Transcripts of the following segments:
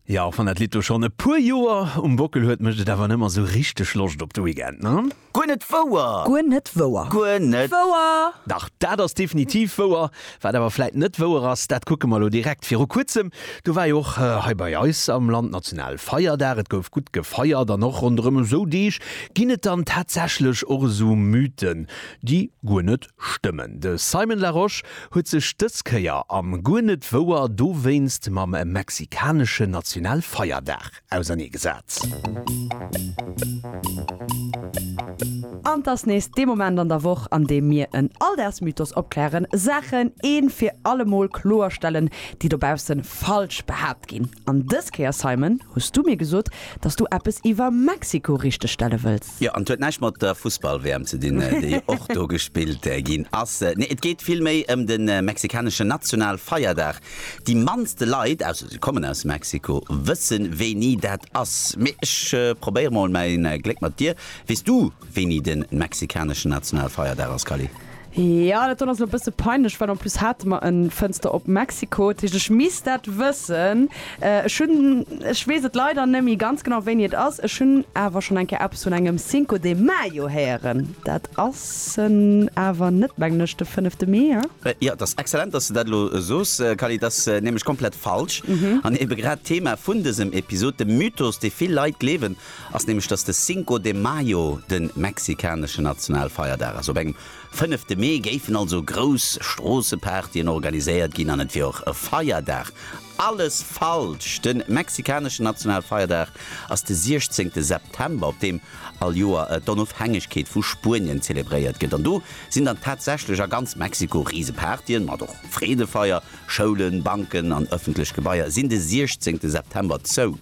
Jo, och wann dat Lidd lo schonn e puer Joer um Bockel huet, mécht et awer nëmmer esou richteg Loscht op de Weekend, ne? Guer net wouer! Guer net wouer! Guer net wouer! Dach, dat ass definitiv wouer. Wat awer vläit net wouer ass, dat kucke mer elo direkt. Viru kuerzem, do war jo och hei bei eis am Land Nationalfeierdag. Et gouf gutt gefeiert an och ronderëm esou Deeg ginn et dann tatsächlech och esou Mythen, déi guer net stëmmen. De Simon Larosche huet sech dës Kéier, a guer net wouer dowéinst, mam mexikaneschen Nationalfeierdag auserneegesat. An 't ass nees dee Moment an der Woch, an deem mir en Alldagsmythos opklären, Saachen een fir allemol kloerstellen, déi dobausse falsch behaapt ginn. An dës Kéier, Simon, hues du mir gesot, dass du eppes iwwer Mexiko richteg stelle wëlls. Jo, an et huet näischt mat der Fussball-WM ze dinn, déi och do gespillt ginn ass. Nee, et geet vill méi ëm de mexikaneschen Nationalfeierdag. Déi mannste Leit, ausser si kommen aus Mexiko, wësse wéini dat ass. Mee ech probéiere mol mäi Gléck mat dir. Weess du, wéini de mexikaneschen Nationalfeierdag ass, Kally? Ja, dat do ass elo e bësse peinlech, well en plus hate mer e Fënster op Mexiko. Dat heescht, ech misst dat wëssen. Ech hunn, ech weess et leider net méi ganz genau, wéini et ass. Ech hunn awer schonn eng Kéier eppes vun engem Cinco de Mayo héieren. Dat ass en awer net, mengen ech, de fënnefte Mee, he? Jo, et ass exzellent, dass de dat elo soos, Kally. Et ass nämlech komplett falsch an ebe grad d'Thema vun dësem Episod, de Mythos, dee vill Leit gleewen, ass nämlech, dass de Cinco de Mayo de mexikaneschen Nationalfeierdag ass. Op engem fënnefte Mee géifen also grouss Stroossepartyen organiséiert ginn an et wier och e Feierdag. Alles falsch! De mexikaneschen Nationalfeierdag ass de 16 September, op deem all Joer d'Onofhängegkeet vu Spuenien zelebréiert gëtt. An do sinn dann tatsächlech a ganz Mexiko Risepartyen, mat och Freedefeier, Schoulen, Banken an ëffentlech Gebaier sinn de 16 September zou.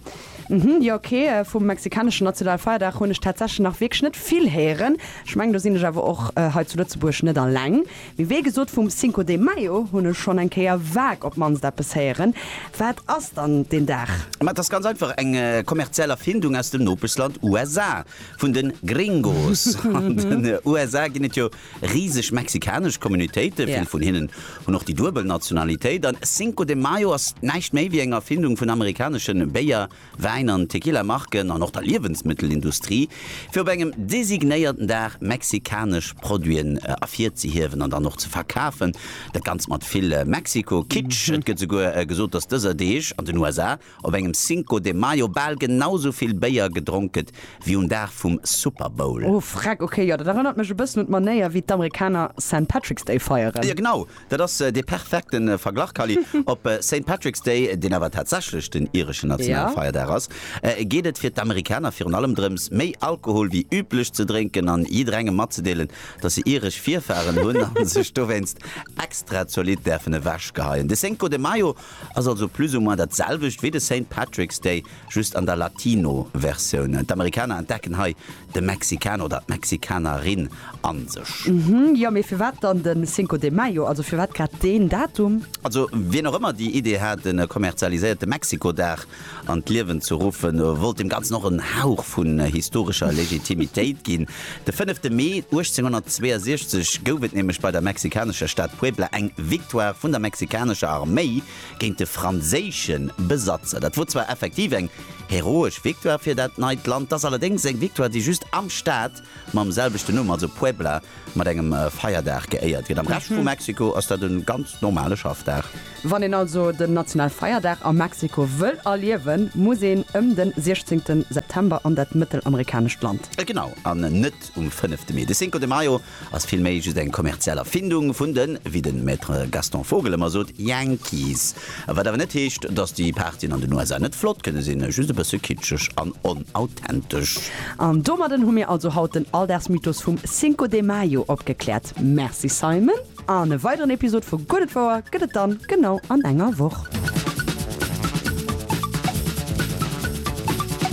Hm jo ok, vum mexikaneschen Nationalfeierdag hunn ech tatsächlech nach wierklech net vill héieren. Ech mengen do sinn ech awer och hei zu Lëtzebuerg net alleng. Mee wéi gesot vum Cinco de Mayo hunn ech schonn eng Kéier vague op d'mannst eppes héieren. Wat ass dann deen Dag? Ma et ass ganz einfach eng kommerziell Erfindung aus dem Nopeschland USA vun de Gringos. An den USA ginn et jo Riseg mexikanesch Communautéite, vill vun hinnen hunn och déi duebel Nationalitéit. An Cinco de Mayo ass näischt méi wéi eng Erfindung vun amerikaneschen Béier-, Wäin an Tequila-Marken an och der Liewensmëttelindustrie, fir op engem designéierten Dag mexikanesch Produiten ervirzehiewen an dann och ze verkafen. Dat Ganzt mat vill Mexiko-Kitsch. Et gëtt esouguer gesot, dass dëser Deeg an den USA op engem Cinco de Mayo bal genau sou vill Béier gedronk gëtt wéi um Dag vum Super Bowl. Oh freck, ok, jo, dat erënnert mech e bëssen un d'Manéier wéi d'Amerikaner Saint Patrick's Day feieren. Jo genau, dat ass dee perfekte Verglach Kally. Op Saint Patrick's Day, deen awer tatsächlech den ireschen Nationalfeierdag ass, geet et fir d'Amerikaner virun allem drëms, méi Alkohol wéi üblech ze drénken an jidderengem matzedeelen, datt se iresch Virfaren hunn a sech dowéinst extra zolidd däerfen ewechgeheien. De Cinco de Mayo Ass also plus ou moins dat selwecht wéi de Saint Patrick's Day, just an der Latino Versioun. D'Amerikaner entdecken hei de Mexikaner oder d'Mexikanerin a sech. Uhmm, jo mee firwat dann den Cinco de Mayo, also firwat grad deen Datum? Also wien och ëmmer déi Idee hat, en kommerzialiséierte Mexiko-Dag an d'Liewen ze ruffen, wollt dem Ganzen och en Hauch vun historescher Legitimitéit ginn. De fënnefte Mee 1862 gouf et nämlech bei der mexikanescher Stad Puebla eng Victoire vun der mexikanescher Arméi géint de franséische Besatzer. Dat wor zwar effektiv eng heroesch Victoire fir dat neit Land, 't ass allerdéngs eng Victoire, déi just am Staat mam selwechten Numm, also Puebla, mat engem Feierdag geéiert gëtt. Am Rescht vu Mexiko ass dat e ganz normale Schaffdag. Wann een also den Nationalfeierdag a Mexiko wëll erliewen, muss een ëm de 16 September an dat mëttelamerikanescht Land. Genau, an net um 5 Mee. De Cinco de Mayo ass vill méi just eng kommerziell Erfindung vun den, wéi de Maître Gaston Vogel ëmmer sot, Yankees. Wat awer net heescht, dass déi Partyen an den USA net flott kënne sinn, just e bësse kitscheg an onauthentësch. An domadden hu mir also haut den Alldagsmythos vum Cinco de Mayo opgekläert. Merci Simon, an e weideren Episod vu Gutt et wouer gëtt et dann genau an enger Woch.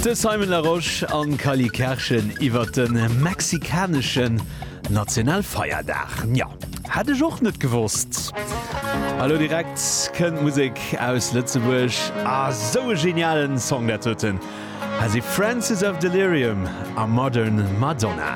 De Simon Larosche an Kali Kerschen iwwert de mexikaneschen National Feierdag, nja, hätt ech och net gewosst. A lo direkt kënnt Musek aus Lëtzebuerg, a sou e genialen Song dat doten, hei si Francis of Delirium a Modern Madonna.